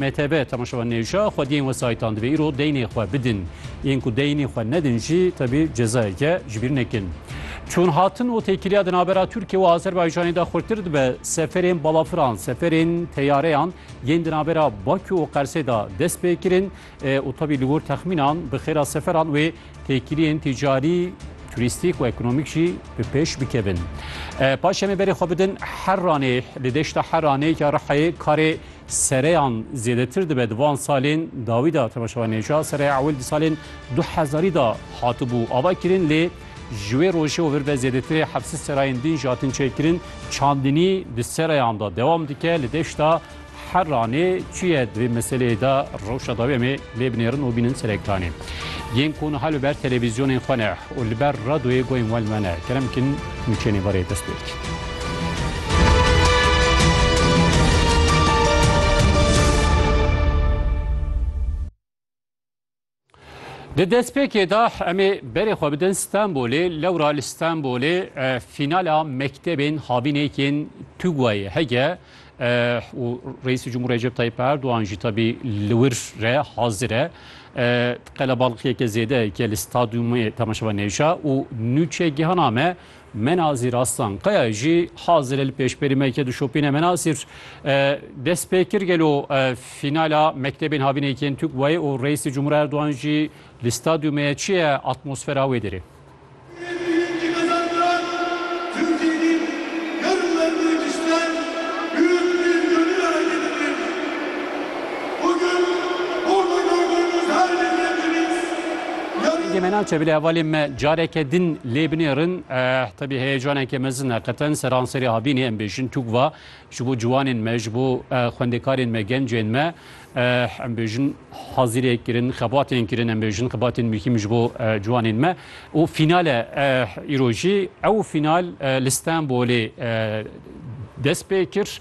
MTB, Temaşevan Nêwşa, Xwediyên wesayîtan divê îro deynê xwe bidin. Yên ku deynê xwe nedin jî tevî cezayeke ji bîr nekin. Çûn hatin û têkiliya di navbera Tirkiye û Azerbaycanê de xurtir dibe. Seferên balafiran, seferên teyareyan yên di navbera Bakû û Qersê de dest pê kirin û tevî li gor texmînan bi xêra seferan wê Têkiliyên tîcarî, turîstîk û ekonomîk jî bi pêş bikevin. Paşê me berê xwe bidin Heranê li deşta Heranê ya Rihayê karê sereyan zêdetir dibe di van salên dawî da tevaşewa nêca sereya ewil di salên du hezarî da hatibû ava kirin lê ji wê rojê û vir ve zêdetirê hepsi serayên din ji hatin çêkirin çandinî di sereyan da dewam dike li deşta Her ranê çi ye di vê meseleyê de rewşa dawî em ê lê binêrin û bînin serek danê. Yên ku niha li ber televîzyonên xwe ne û li ber radoyê guhên wan me ne kerem bikin nûçeyên ê barê dest pê bikin. Di destpêkê de em ê berê xwe bidin Stenbolê, lewra li Stenbolê fînala mektebên havînekên TUGWAyê hege û Reîsê Cumhur Recep Tayyip Erdogan jî tabî li wir re hazir e. Qelebalixiyeke zêdeyeke li stadyumê temaşevan hêja û nûçegihana me Mena zîr Aslan Kaya jî hazirê li pêşberî me yekê dişopîne. Mena zîr dest pê kir gelo fînala mektebên havînê yekên Tûk wayê û Reîsê Cumhur Erdogan jî li stadyumê ye. Çi ye atmosfera wê derê? Dengê me naçe bilê hevalên me careke din lê binêrin. Tevî heyecaneke mezin e qeten seranserê havînê em bêjin Tûkva ji bo ciwanên me, ji bo xwendekarên me, gencên me em bêjin hazîrê kirin, xebatên kirin em bêjin xebatên muhîm ji bo ciwanên me û fînal e îro jî. Ew fînal li Stenbolê dest pê kir.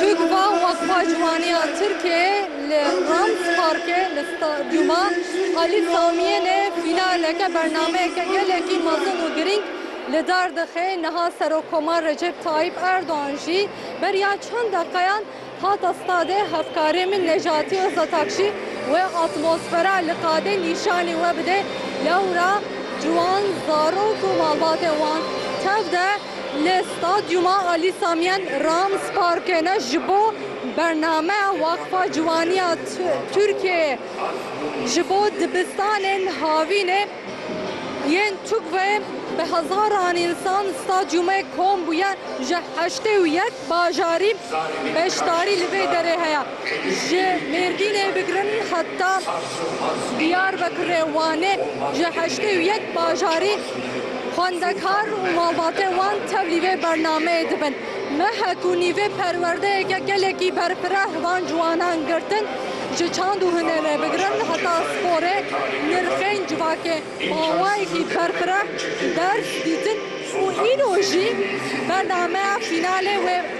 Tug va Waqfa Ciwaniya Tirkiyeyê li Rams Parkê li Stadyuma Alî Samiyênê fînaleke bernameyeke gelekî mezin û girîng li dar dixe. Niha Serokkomar Recep Tayyîp Erdogan jî beriya çend deqeyan hate stadê. Hevkarê min Necatî Ozatakşî wê atmosfera li qadê nîşanî we bide. Lewra ciwan, zarok û malbatên wan tev de. Li Stadyûma Alî Samiyen Rams Parkêne ji bo bernameya Weqfa Ciwaniya Tirkiyeyê ji bo dibistanên havînê yên Tukvayê bi hezaran însan stadyûmê kom bûye, ji heştê û yek bajarî beşdarî li vê derê heye. Ji Mêrdînê bigirin heta Diyarbekirê Wanê ji heştê û yek bajarî xwendekar û malbatên wan tevlî vê bernameyê dibin. Mehek û nîvê perwerdeyeke gelekî berfireh van ciwanan girtin. Ji çand û hunerê bigirin heta sporê nirxên civakê mawayekî berfireh ders dîtin û îro jî bernameya fînalê wê.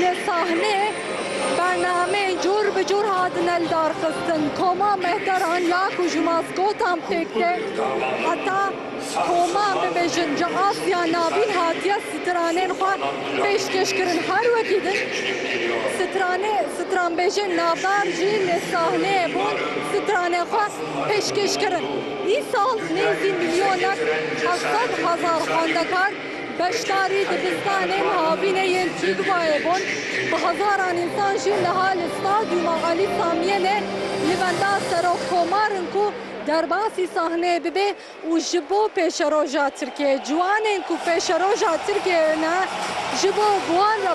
Li sahnê bernameyên cor bi cor hatine lidarxistin, koma mehtaran ya ku ji maskotan pêk tê heta koman bibêjin ji Asya navîn hatiye stranên xwe pêşkêş kirin. Her wekî din stranê stranbêjên navdar jî li sahneyê bûn stranên xwe pêşkêş kirin. Îsal nêzî milyonek heft sed hezar xwendekar, Beşdarî dibistanên havînê yên Tîgvayê bûn, bi hezaran însan jî niha li Stadyûma Alî Samiyelê li benda Serokkomar in ku derbasî sahneyê bibe û ji bo pêşeroja Tirkiyeyê, ciwanên ku pêşeroja Tirkiyeyê ne, ji bo bi wan re.